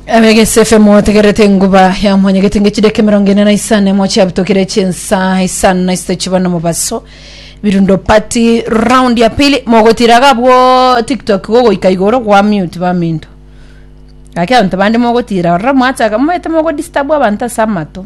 Abegesefe motegererete enguba ya mwanyegete ngechideka emerongo ene na isano emo chiabutokire chinsa isano na isito chiba nomobaso birundo pati round ya pili mogotiraga abwo tiktok gogoika igoro gwa mute baminto gaki abanto bande mogotira ororo mwachaka moete mogodisturb abanto ase amato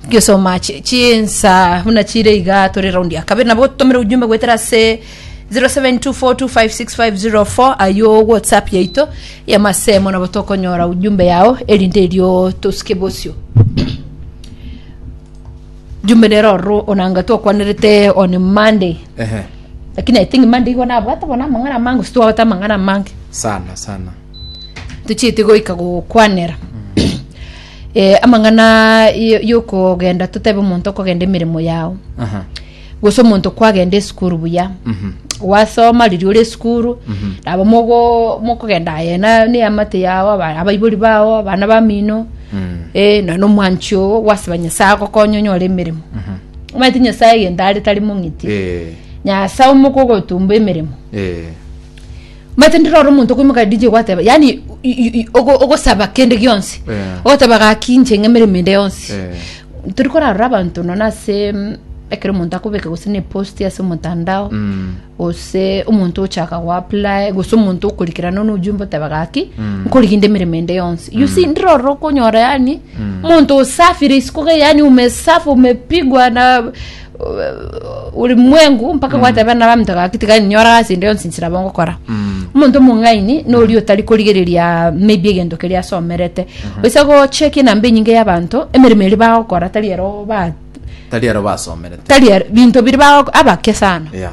Thank you so much chinsa buna chire iga tore round ya kabiri nabo gotomera ujumbe gwetera ase 0724256504 ayo whatsapp yaito ya masemo nabo tokonyora ujumbe yao erinde erio tosike bosio jumbe nero ro onanga twakwanerete on monday Ehe. lakini i think monday igo nabwate bona amang'ana amange gose twabate amang'ana amange Sana sana. tuchiti goika gokwanera Eh, amang'ana y- y'okogenda totebe omonto okogenda emeremo yao Aha. gose omonto kwagenda esukuru buya Mhm. wasoma riria ore esukuru Mhm. nabo mogo- mokogenda aye na- neamate yao aba- abaibori bao abana bamino Mm. eh, na nomwanchi oo gwasaba nyasaye agokonya onyore emeremo Mhm. omanyete nyasaye egento are tari mong'iti Eh. nyasaye omoka ogotumba emeremo Eh. Omanyete ndirore omonto okoimoka DJ gwateba yani y- y- y- ogo- ogosaba kende gionsi Eh. ogoteba gaki inche ng'a emeremo ende yonsi Eh. turi korarora abanto nona ase mm, ekero omonto akobeka gose ne post ase omotandao Mm. gose omonto ochaka goapply gose omonto okorikera nona ujumbe oteba gaki Mm. nkoriginde emeremo ende yonsi you see ndirorora okonyora yani omonto osafire isiko ge yani umesafa umepigwa na ulimwengu mpaka gwateba na baminto gaki tiga nyora ase inde yonsi nsira bongokora omonto omong'aini nori otari korigereria maybe egento keria asomerete oise gocheki enamba enyinge y'abanto emeremo eri bagokora tari ero ba tari ero basomerete tari ero binto biri bago abake sana Yeah.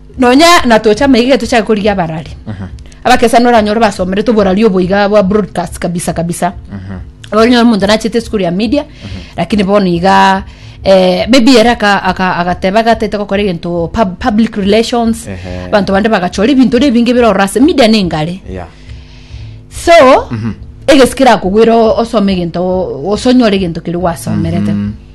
nonya natoche amaiga iga tochake korigia abarari abakesani oranyore basomerete oborari obo iga bwa broadcast kabisa kabisa oranyore omonto nachete esukuru ya media lakini bono iga eh, maybe ere aka- aka- agateba agataete gokora egento pub- public relations Ehe. abanto bande bagachora ebinto bire ebinge bire ororo ase media nengare Yeah. so egesikira akogwera osome egento osonyore egento keri gwasomerete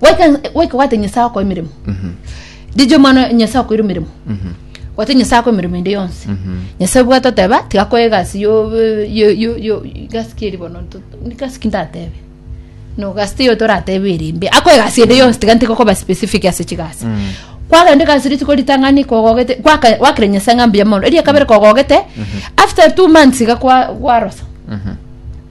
Goika goika gwate Nyasae okoa emeremo. Riche omwana Nyasae okoire emeremo. Gwate Nyasae akoa emeremo ende yonsi. Nyasae obwate oteba tigakoa egasi yo yo yo yo egasi ki eri bono nto egasi ki ndatebe? No egasi teiyo toratebe ere mbe. Akoa egasi ende yonsi tiga ntiga koba specific ase chigasi. Kwagenda egasi rituko ritang'ani kogogete gwaka gwakire Nyasae ng'a mbuya mono. Eria kabere kogogete after two months iga kwa kwarosa.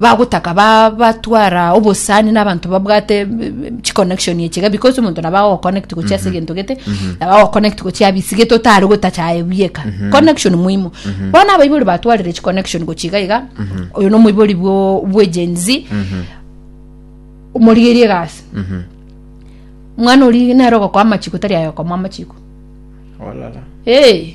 bagotaka ba- batwara obosani na abanto babwate eh, eh, chiconnection echiga because omonto nabo agoconnect gochia ase egento gete nabo agoconnect gochia abisi gete otare gotachaye buyeka connection muhimu bono abaibori batwarire chiconnection gochia iga iga oyo nomoibori bwo- bwe Gen Z omorigerie egasi mwana ori nere ogokoa amachiko tari aye okomwa amachiko Olala. Eh,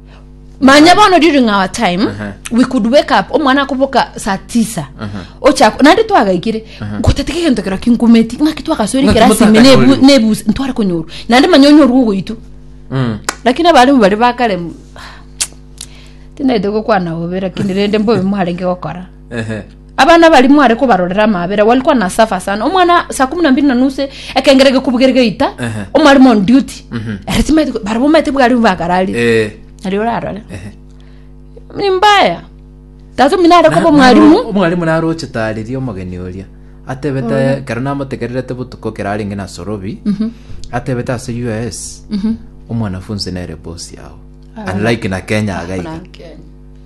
manya bono during our time Aha. we could wake up omwana akoboka saa tisa ochako nandi twagaikire ngotateka egento kero kinkumeti ng'aki twagasore Ng'aki kerasi ime motakanyore nebu- igo. nebusi ntware konyoru nandi manya onyoru ogoitu Mm. lakini abarimu bari bakare tinaite gokwana bobe lakini rende mbobe mwarenge gokora Ehe. Abana bari mware kobarorera amabera wari kwana safa sana omwana saa kumi na mbili na nusu ekengere gekubugere geita Ehe. omwarimu on duty Mhm. ere timaete barabo maete bwari bakarari Eh, ari orarore ehe. ni mbaya tata omino are koba Na- omwarimu naro- omwarimu naroche taaririe omogeni oria atebete kero namotegererete botuko kero arenge na sorobi atebete ase us omwanafunzi nere bosi ao unlike na kenya agaiga Kenya.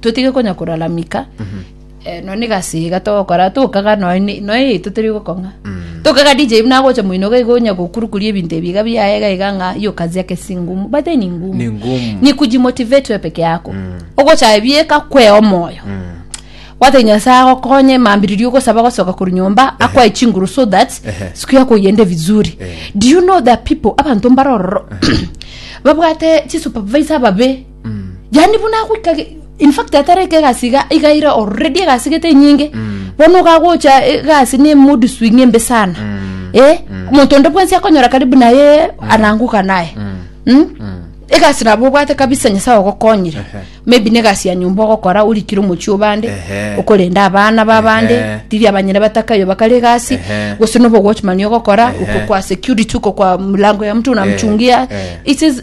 Totige konya koraramika eh, no negasi iga togokora tokaga noe ne- noe yaito tori gokong'a tokaga dj buna agocha moino iga iga onya gokurukuria ebinto ebi iga biaye iga iga ng'a iyo kazi yake si ngumu but then ni ngumu Ni ngumu. ni kujimotivate we peke yako ogocha ebieka kwea omoyo gwate nyasaye agokonye mambiriria ogosaba gosoka koru nyomba akwae chinguru so that Ehe. siku yako yende vizuri do you know the people abanto mbarororo babwate chisupervisor ababe yani buna agwika in fact atareka egasi iga iga ira already egasi gete enyinge bono iga agocha egasi ne mood swing embe sana eh omonto onde bwensi akonyora karibu naye ananguka naye Mm? egasi nabo obwate kabisa nyasaye ogokonyire maybe ne egasi ya nyomba ogokora orikire omochie obande Ehe. okorenda abana babande Ehe. tiri abanyene batakayo bakare egasi Ehe. gose nobo watchman ogokora uko kwa security uko kwa mlango ya mtu unamchungia Ehe. it is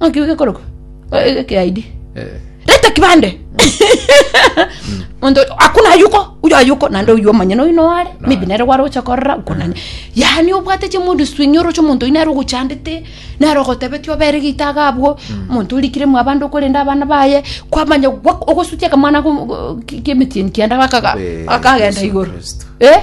Ng'aki iga gekorokwa? Eh, eh, eke ID. Eh. Reta kibande. Monto oyo, hakuna ayuko, uyo ayuko, naende uyu omanye noyu noare, Noare. maybe nere gware gocha korora, ukonani. Yani obwate chimood swing oroche omonto oyu nere ogochandete, nere ogotebeti obere gita iga abwo, omonto orikire mwabande okorenda abana baye, kwamanya gwa- ogosutia akamwana ko- ko- k'emetieni kianda gakaga- Eh, gakagenda Yesu igoro. Kristo. Eh?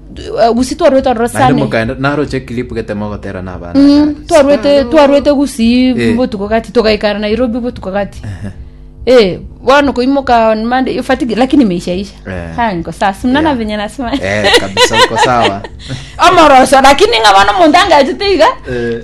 Eh, gusi twarwete ororo naende sane mokaenda naroche clip gete mogotera na abana Mm, twarwete twarwete gusi Eh. botuko gati togaikara nairobi botuko gati Eh, bono koimoka on Monday, you fatigue, lakini imeishaisha Eh. Ha, niko sawa. Si mnaona Yeah. venye nasema eh kabisa uko sawa omoroso lakini ng'a bono omonto angachete iga Eh,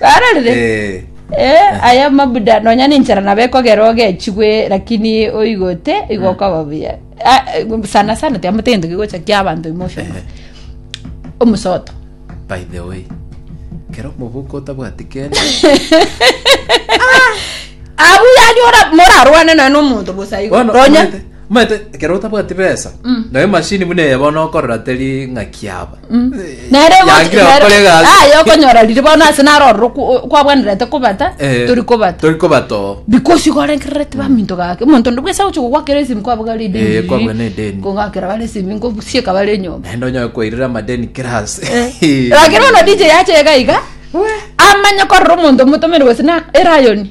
Karorire? Eh. Eh, aya mabuda nonya ninchera nabo ekogera ogechigwe lakini oigote igo okaba buya Ah, eh, sana sana tiamotege ntoki gochakia abanto emotion omosoto by the way kero omoboko otabwati kende abu yani ora- morarwane nonya nomonto bosa igo bono nonya omanyete Omanyete ekero otabwati besa Mm. na emashini buna eye bono okorora teri ng'aki aba Nere gochi- Yagire nere- okore egasi. Ah, yokonyora riri bono ase narorire ku- kwabwenerete kobata Eh, tori kobata tori kobata oo because igorengererete baminto gake omonto onde bwese agocha gogwakera esimi kwabugara Eh, kwabugana edeni. kogakera bare esimi ngobusieka bare enyomba naende onyoe koirera amadeni kirasi lakini ono dj yache egaiga amanye korora omonto omotomere gose na erayoni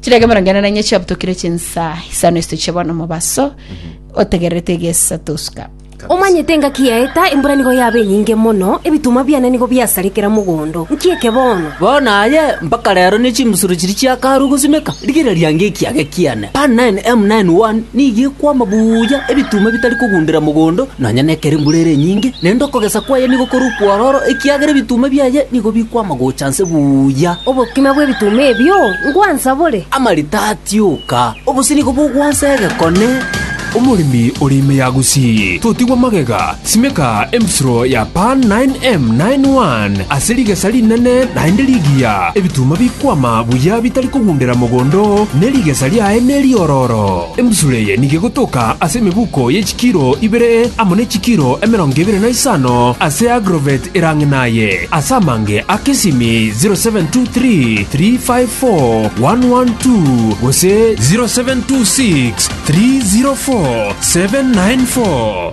chirege emerongo enana inye chiabutokire chinsa isano esito chia bono mobaso otegererete egesato osuka Omanyete engaki yaeta, embura nigo yaba enyinge mono, ebituma biane nigo biasarekera mogondo. Nkieke bono. Bono aye mpaka rero ne chimbusuro chiria chiakarwa gosimeka, rigireria nge ekiage kiane. Pan 9 M 9 1 nigo ekwama buya, ebituma bitari kogundera mogondo, nonya nekero embura ere enyinge, naende okogesa kwaye nigo kore okwororo, ekiagera ebituma biaye nigo bikwama. Gocha nse buya. Obokima bw'ebituma ebio ngwansa bore. Amarita atioka. Obosio nigo bogwansa egekone. Omoremi ore ime ya gusii, totigwa magega, simeka embisuro ya pan 9M91 ase rigesa rinene naende rigiya, ebituma bikwama buya bitari kogundera mogondo, ne rigesa riaye neriororo. Embisuro eye nigo egotoka ase emebuko ye kilo ibere amo ne chikilo emerongo ebere na isano ase agroveti erang'e naye, ase amange a kesimi 0723354112, gose 0726304794.